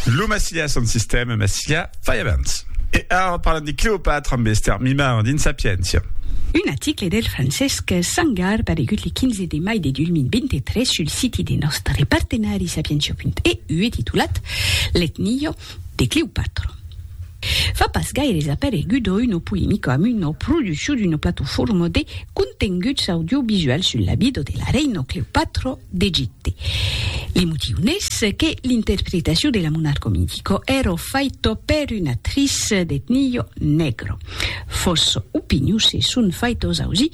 Lo Massilia son sistèma Massilia fai abans. E ara parlam de Cleopatra amb Esther Mimard dins Sapientia. Un article del Francesc Sangar paregut le 15 de mai de 2023 sul siti de nòstre partenari Sapientia.eu e titulat L'etnio, Clèop. De Cleopatra. Fa pas gaires aparegut o uno polemico amb uno producho d'uno platofòrma de contenguts audiovisuals sul la vida de la reina Cleopatra d'Egipte. Li motiu n'es que l'interpretacion de la monarca mitico èra faita per una actrice d'etnia negra. Fòssa opinion se son faitas ausir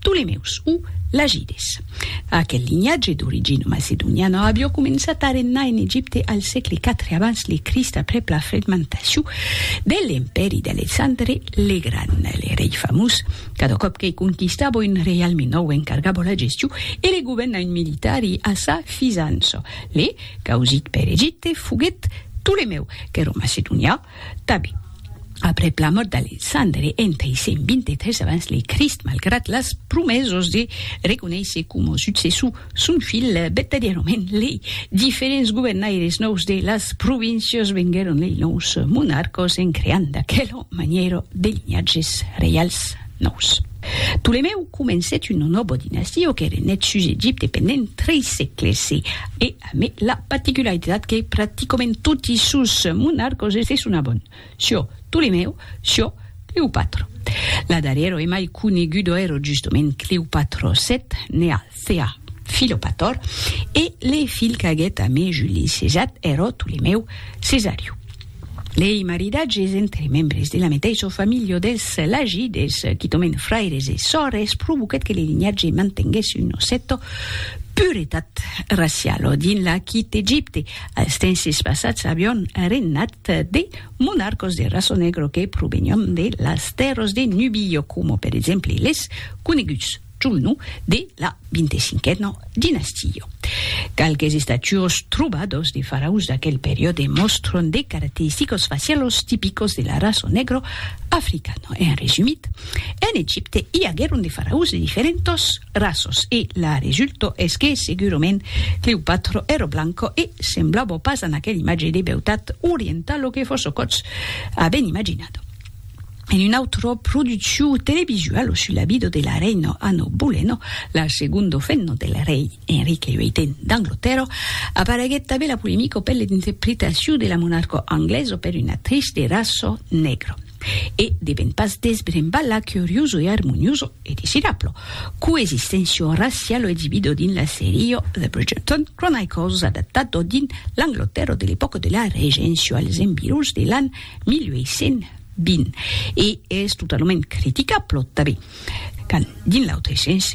Ptolemeus o Lagides. Aquel linhatge d'origina macedoniana avió començat a regnar en Egipte al sègle iv abans le Crist aprèp la fragmentacion de l'empèri d'Alexandre le Gran. Le rei famós, cada còp que conquistava un reialme nòu encargava la gestion e le governament militari a sa fisança. Le causit per Egipte foguèt Ptolemèu, qu'èra macedonià, Tabi. Aprèp la mòrt d'Alexandre en 323 abans le Crist, malgrat las promesas de reconéisser coma successor son filh, vertadièrament lei diferents governaires nòus de las províncias venguèron lei nòus monarcas en creant d'aquela manièra de linhatges reials nòus. Ptolemèu comencèt una nòva dinastia que renèt sus Egipte pendent tres sègles e Amé la paticularitat que practicament toti sos monarcos es de son abon, Sio Ptolemèu, Sio Cleopatro. La darrièro e mai conegudo ero justement Cleopatro vii, ne al Thea Philopator, e le filh qu'aguèt amé Juli Cesat ero Ptolemèu Cesariu. Lei maridatges entre membres de la meteissa familha dels Lagides, quitòment fraires e sòrres, provoquèt que le linhatge mantenguèsse una cèta puretat raciala dins l'Aquit Egipte. Als tenses passats avián regnat de monarcas de raça negra que provenián de las tèrras de Nubia, coma per exemple les coneguts. Chumnu de la vintecinquena dinastia. Qualques estatuos trobados de faraus d'aquel periòde mòstron de caracteristicos facialos tipicos de la raça negro africana. En resumit, en Egipte i aguèron de faraus de diferentas raças e la resulta es que segurament Cleopatra èra blanca e semblava pas a aquela imatge de beutat orientala que fòssecots avèn imaginada. en un autro produciu televisual sus la vida de la reina Anno Boleno, la segondo femna del rei Enrique VIII d'Anglotèrra, apareguèt tanben la polemica per l'interpretaciu de la monarca anglesa per una actrice de raça negra. E devèn pas desbrembar la curiosa e armoniosa, e desirabla, coexisténcia raciala exibida dins la seria The Bridgerton Chronicles adaptada dins l'Anglotèrra de l'epòca de la Regéncia als environs de l'an 1820 e es totalament criticable tanben quand, dins l'autre sens,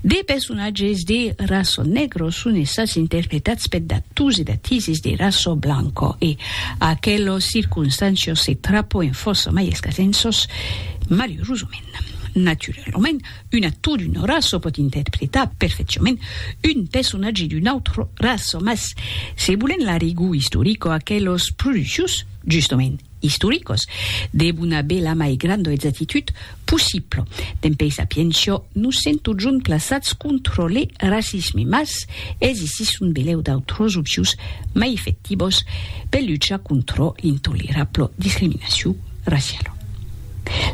de personatges de raça negro son estats interpretats per d'actors e d'actrises de raça blanca e aquelas circonstàncias se trapoen fòrça mai escasens sos, malurosament. Naturalament, Un actor d'una raça pòt interpretar perfecciament un personatge d'una autra raça, mas se volèm la rigor istorica, aqueles produccions, justament istoricas, devon aver la mai granda exactitud possibla. Dempèi sapiéncia, nos sèm totjorn plaçats contra le racisme, mas existisson belèu d'autras opcions mai efectivas per luchar contra l'intolerabla discriminacion raciala.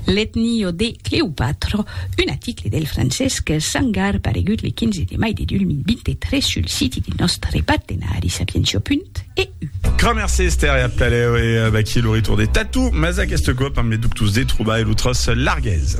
L'etnio de Cleopatra, un aticle del Francesc Sangar paregut le 15 de mai de 2023 sul siti de nòstre partenari sapientia.eu. Kramer Sester e a Plaleu e vaqui lo retorn de Tatou, mas aqueste còp amb le Ductus de Troba e lo Tros Larguez.